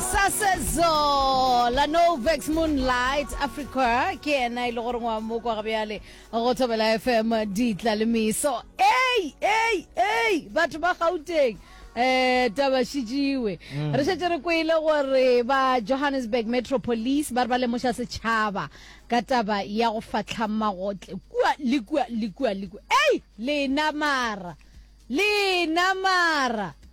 sasezo la novex moonlight africa ke ena e le gore ngwa mo kwa gabjale go thobela fm ditla le meso ei ei ei batho ba gauteng eh taba šijiwe mm. re šetse re kwele gore ba johannesburg metro police ba re ba lemoša setšhaba ka taba ya go fatlha magotle kua le kua le kua le kua ei lena mara lena mara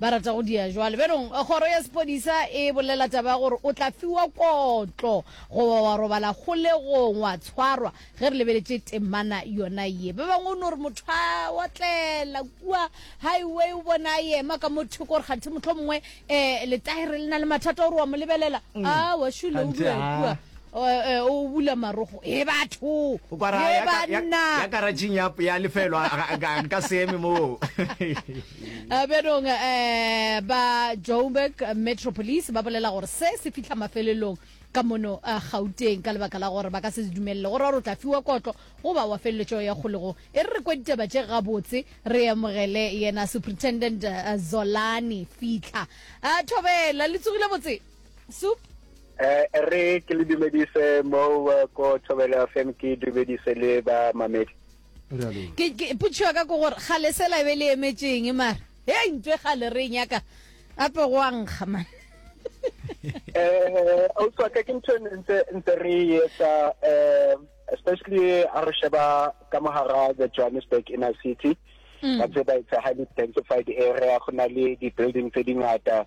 ba rata go dia jwale bjanong kgoro ya sephodisa e bolela taba ya gore o tla fiwa kotlo goba wa robala kgolegong wa tshwarwa ge re lebeletše temana yona ye ba bangwe o no re motho a otlela kua highway o bona a yema ka mo thoko gore kganthe motlho mongwe um eh, letaere le na le mathata o re wa mo lebelela mm. a ah, wa shule o dua kua Eh, eh, o bula marogo e batho e banna ya karatšheng ya lefelo nka seeme moo Eh, bjanong um eh, ba joburg metro police ba bolela gore se se fitlha mafelelong ka mono a eh, gauteng ka lebaka la gore ba ka se dumelele gore gore o tla fiwa kotlo goba wa feleletšo ya kgolego e re re kwa ditaba tše gabotse re amogele yena superintendent eh, zolani fitlha a eh, thobela le tsogile botse sup eh re ke le dumedise mo ko thobela fm ke dumedise le ba mamedi ke potšiwa ka ko gore ga lesela e be le emetšeng mara e ntwe ga le re nyaka ape go a nkga man eh o tswa ka ke ntse ntse ntse re etsa eh especially a re sheba ka mogara the Johannesburg inner city mm. ba tse ba itse ha di densified area go na le di building tse di ngata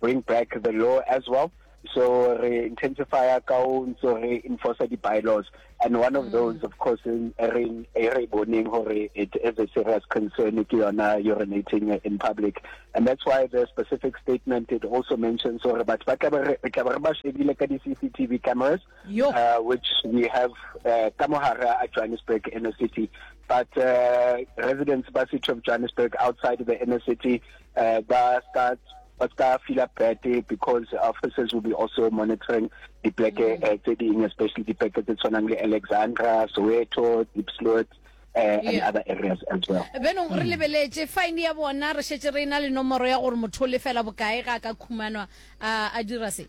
bring back the law as well so re intensify ka o ntse re enforce di bylaws and one of mm. those of course in ring re boning hore it is a serious concern if you are now urinating in public and that's why the specific statement it also mentions hore but ba tla re tla re ba shebile ka di CCTV cameras uh, which we have uh, ka mohara a Johannesburg inner city but uh, residents ba city of Johannesburg outside the inner city uh, ba ska ba ska fila bete because officers will be also monitoring dipleke mm. uh, tse ding especially dipleke tse tshwanang le alexandra soweto diepsloot Uh, eh, yeah. and other areas as well benong re mm. lebeletse fine ya bona re šetse re ena le nomoro ya gore motho o lefela bokae ga a ka khumanwa a dira se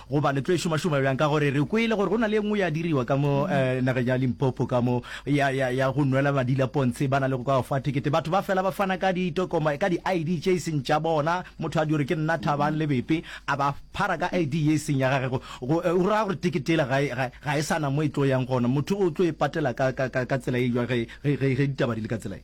Goba le tlo e šomašoma bjang? Ka gore re kwele gore go na le e nngwe ya diriwa ka mo nageng ya Limpopo ka mo, ya, ya, ya go nwela madi la pontshe. Ba na le go ka go fa thekete. Batho ba fela ba fana ka ditokoma, ka di-ID tše e seng tša bona. Motho a di gore ke nna Thabang Lebepe, a ba phara ka ID ye e seng ya gage. Go, go, go ra gore tekete yela ga e, ga, ga e sa na mo e tlo yang gona. Motho o tlo e patela ka, ka, ka, ka tsela e jwang ge, ge, ge, ge ditaba di le ka tsela ye?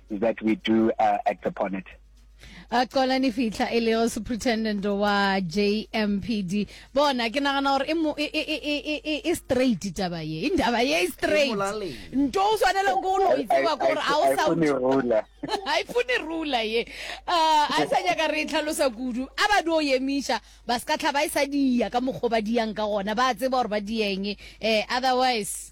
that we do uh, act upon it. a qola ni fihla e lego superintendent wa jmpd bona ke nagana gore e, e, e, e straight taba ye indaba ye straight nto o swanele ko no itseba ko gore a o sa a e fune rula ye a e sa nyaka re itlhalosa kudu a ba dio yemiša ba se ka tlha ba e sa dia ka mokgwa ba diyang ka gona ba tseba gore ba dieng um otherwise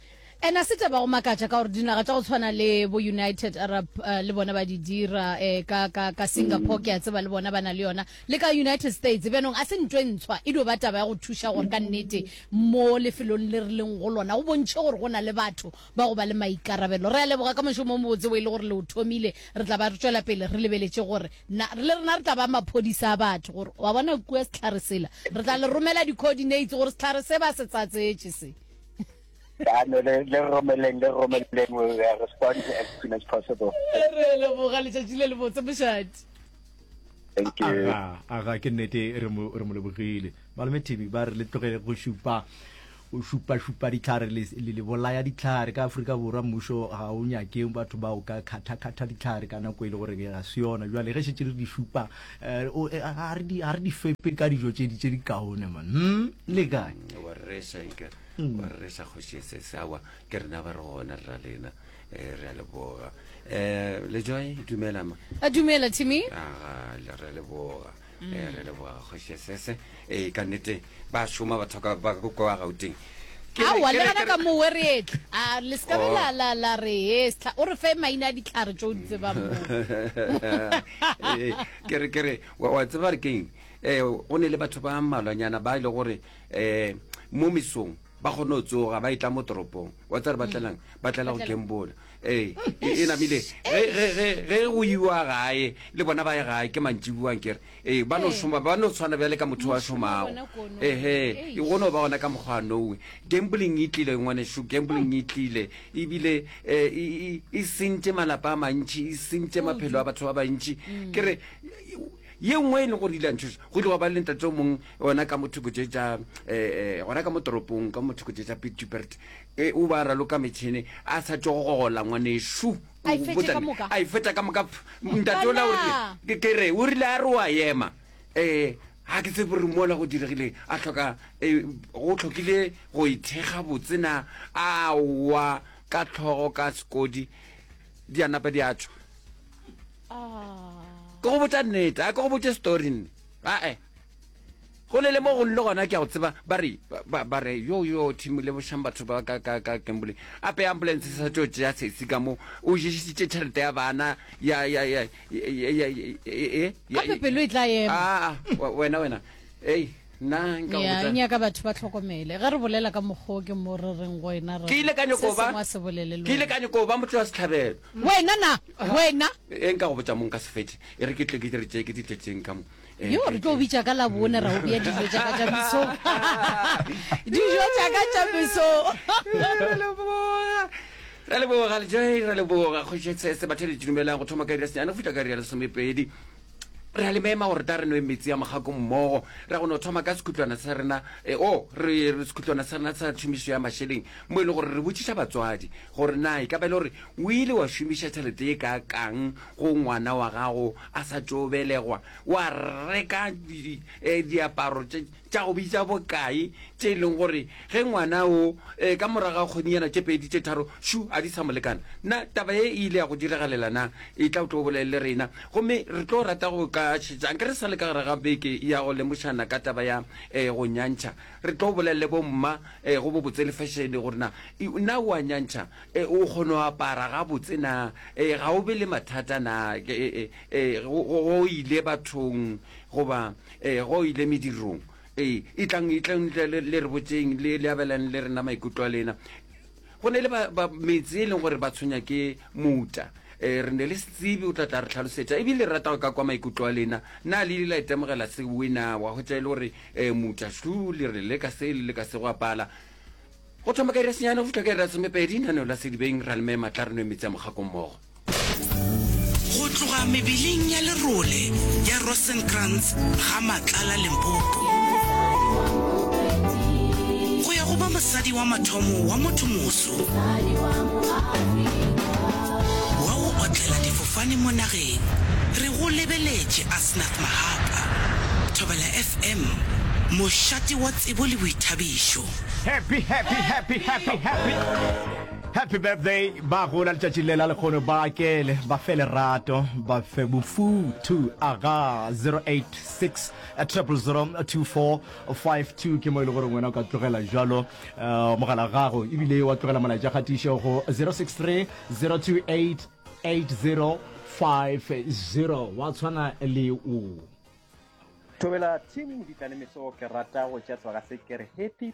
And a se taba go makatša ka gore dinaga tša go tshwana le bo United Arab uh, le bona ba di dira eh, ka, ka, ka Singapore mm. ke a tseba le bona ba na le yona le ka United States bjanong a se ntho e ntshwa e dio ba taba ya go thuša gore ka nnete mo lefelong le re leng go lona go bontšhe gore go na le batho ba go ba le maikarabelo re a leboga ka mošomo o mobotse o e le gore le o thomile re tla ba re tswela pele re lebeletše gore le rena re tla ba maphodisa a batho gore wa bona kua setlhare sela re tla le romela di-coordinates gore setlhare se ba se tsatsetše se ano le le romeleng le romeleng we will respond as soon as possible re leboga letšatši le lebotse mošadi thank you aga aga ke nnete re mo re mo lebogile malome tv ba re le tlogele go šupa o šupa šupa ditlhare le le- le bolaya ditlhare ka aforika borwa mmušo ga o nyake batho ba o ka kgatha kgatha ditlhare ka nako e le gore ga se yona jwale ge šetse re di šupa Ga re di fepe ka dijo tše di kaone man. Hmm, le kae? Wa resa ika, hmm. wa resa kgoši ya sese. Awa, ke rena ba re gona rra lena. Eh, re a leboga. Eh, Lejoy, dumela ma. A dumela, Timmy. Aga, re a leboga. Hmm. Eh, re a leboga kgoši ya sese. Ee, ka nnete, ba šoma bathoka ba go kwa Gauteng. Ke re- awa ke re- legana ke re- ka mo wereetla a le sekabe Oh. la la la re hestlha o re fe maina a ditlhare tse o di tsebang mo Ee, ke re ke re wa wa tseba re keng um go ne le batho ba mmalwanyana ba e le gore um mo mesong ba kgone go tsoga ba e tla mo toropong wa tsa re batlelang ba tlela go Batlela. gambola ee e e namile ge ge- ge- ge go iwa gae le bona ba ye gae ke mantši buang kere ee ba no eh. šoma ba no tshwana bjale ka motho wa šomago ehe e go no ba gona ka mokgwa nowe gambling e tlile ngwaneso gambling e tlile ebile eh, e sentše malapa a mantšhi e sentše maphelo a batho ba bantšhi mm. ke re ye nngwe e leng gore ile antšhosa go tloga ba le ntate o mongwe ona ka mothoko tše tša um eh, gona ka mo toropong ka mothoko tše tsa pitubert o ba raloka metšhene a sa tšo gogola ngwaneso A e fetše ka moka. a e fetša ka moka pf, ntate ola o rile Banna! ke- ke re o rile a re wa ema um ga ke tsebe gore mola go diregile a tlhoka um go tlhokile go e thekga botsena a wa ka tlhogo ka sekodi di a napa di a tšwa Ah. ke go botša nnete a ke go botše story nne ae go ne le mo go nle gona ke a go tseba ba re ba re yo yo thimo le bošang batho ba ka ka ka kembole ape ambulance e sa tlo tšea sesi ka mo o jesitše tšhelete ya bana ya ya ya gape pelo e tla ema ah, ah, wena wena ei nna nka go botsa nyaka batho ba tlhokomele ge re bolela ka mokgwa ke mo re reng go ena re ke ile ka nyoko ba se bolele ke ile ka nyoko ba motho wa setlhabelo wena na wena e nka go botsa mong ka sefete e re ke tle ke re tšee ke di tletseng ka mo yo re tlo bitša ka labone ra o bea dijo tša ka tša meso dijo tša ka tša meso ra leboga lejai ra leboga kgošetsese batho le didumelang go thoma ka iri ya senyane go fitlha ka iri ya lesomepedi re a le mema gore ta re nwe metsi a mogako mmogo ra go no thoma ka sekhutlwana sa rena e, o re sekhutlwana sa rena sa thumiso ya mašeleng mo e le gore re botšiša batswadi Gore na e ka ba e le gore o ile wa šomiša tšhelete e kaakang go ngwana wa gago a sa tšo belegwa, wa reka diaparo tša go bitša bokae tše e leng gore ge ngwana o ka morago ga kgonyana tše pedi tše tharo šu a di sa mo lekana. Na taba ye e ile ya go diragalela? Na e tla o tlo o bolelele rena. Gomme re tlo rata go ka šetša nke re sa le ka gare ga beke ya go lemošana ka taba ya go nyantšha. Re tlo bolelele bo mma e go bobotse le fešene gore na e na o a nyantšha e o kgono apara ga botse na e ga o be le mathata na ke e e go ile bathong goba e go ile medirong e e tlang e tlang le re botseng le le abelang le rena maikutlo a lena. Go ne le ba, ba metsi e leng gore ba tshwenya ke mouta. E, re ne le se tsebe o tla tla re tlhalosetša. E bile rata go ka kwa maikutlo a lena. Na le ile la itemogela se wena wa hwetša e le gore e, mouta shlu le re le ka se le le ka se go apala. Go thoma ka iri ya senyane go fihla ka iri ya somepedi, naneo la sedibeng, ra le mema tla re nwe metsi a mogako mmogo. Go tloga mebeleng ya lerole ya Rosenkrantz ga Matlala Limpopo go ya go ba mosadi wa mathomo wa motho moso wa go otlela difofane mo nageng, re go lebeletše Asnath Mahapa, Thobela FM, mošate wa tsebo le boithabišo. Happy, happy, happy, happy, happy. Happy birthday ba gola letšatši le la lekgono ba kele ba fe lerato ba fe bofuthu aga 086 0002452 ke mo e le gore wena o ka tlogela jalo eh, mogala gago ebile wa tlogela molaetša kgatišo go 063 028 8050 wa tshwana le o Thobela team di tla le meso ke rata go tša tloga se ke re happy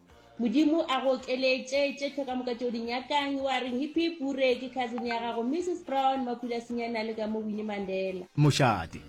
Modimo a go okeletše tše tlhoka moka tšeo di nyakang. Wa reng hippie pure ke cousin ya gago Mrs Brown Makula Sinyana le ka mo Winnie Mandela. Mošate.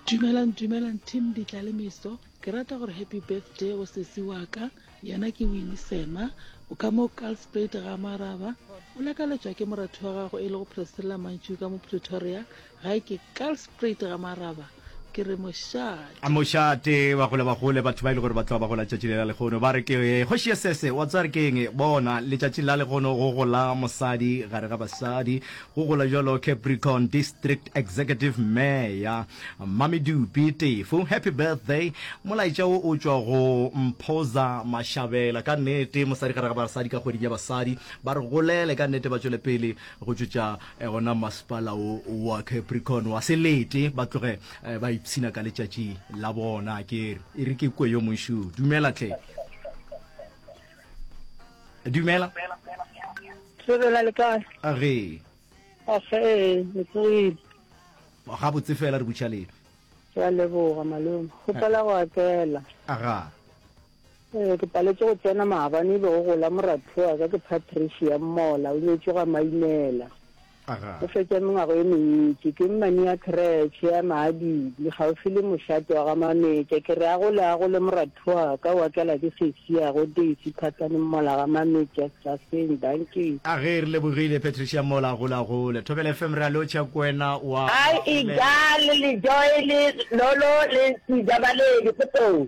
Dumelang dumelang team Ditla le Miso ke rata gore happy birthday go sesi wa ka yena ke Winnie Sema o ka mo Kalsprate ga Maraba o lakaletšwa ke moratho wa gago e lego Priscilla Mantšuka mo Pretoria Ga ke Kalsprate ga Maraba, ke re mošate. Mošate, ba gole ba gole, batho ba e le gore ba tloga ba gola tšatši le la legono ba re ke kgoši ya sese. Wa tsware ke eng? Bona, letšatši la legono go gola mosadi gare ga basadi, go gola jalo Capricorn District Executive Mayor Mmamedupi Tefo. Happy birthday. Molaetša wo o tšwa go Mphoza Mashabela. Ka nnete, mosadi gare ga basadi ka kgweding ya basadi. Ba re golele ka nnete, ba tšwele pele go tšwetša E gona masepala wo wa Capricorn wa se lete ba tloge eh, ba ipshina ka letšatši la bona kere e re ke kwe yo mošu dumela tle dumela sebela le kae a re age ee metsogile ga botse fela re butšha lena ke a leboga malome gopela go atela aga Ee, ke paletše go tsena maabane e be go gola moratho wa ka, ke Patricia Mmola, o nyetšwe ga Mainela. Aga. O fetša mengwago e mentši, ke mmane ya kretšhe ya Maadibi, kgauswi le mošate wa ga Mametša. Ke re a gole a gole moratho wa ka, o akela ke sesi ya go Daisy Phatsane Mmola ga Mametša, Staseng, Dankie. Age, re lebogile Patricia Mmola, a gole a gole. Thobela FM re a lotšha ko wena wa. Hi Igal le Joel Lolo le Ntsi Jabaledi potong.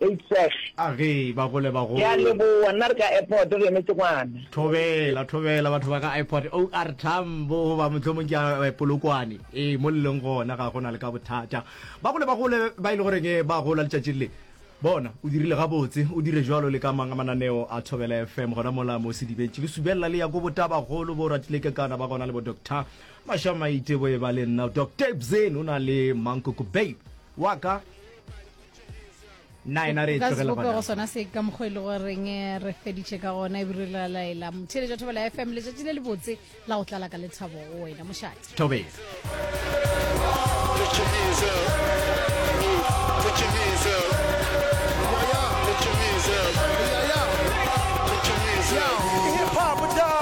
Eisesh. A ge ba gole ba go. Ke a leboa, nna re ka airport re emetse ngwana. Thobela, Thobela, batho ba ka airport, OR Tambo goba mohlomong ke ya Polokwane, ee, mo le leng gona ga go na le ka bothata. Ba gole ba gole ba e le goreng ba gola letšatšing le, bona, o dirile gabotse, o dire bjalo le ka mang a mananeo a Thobela FM gona mola mo Sedibetše. Ke subelela le ya ko Botabagolo, bo Ratile Kekana ba gona le bo Doctor Mashamaite, bo e ba le nna Doctor Ebzeni o na le Mankoko Bay wa ka. nna ena re e tlogele sebopego sona se ka mokgwa e le goreng eh, re feditše ka gona e bire la laela motheletša thobela ya fm letšatši le lebotse la go tlala ka lethabo go wena mošate thobela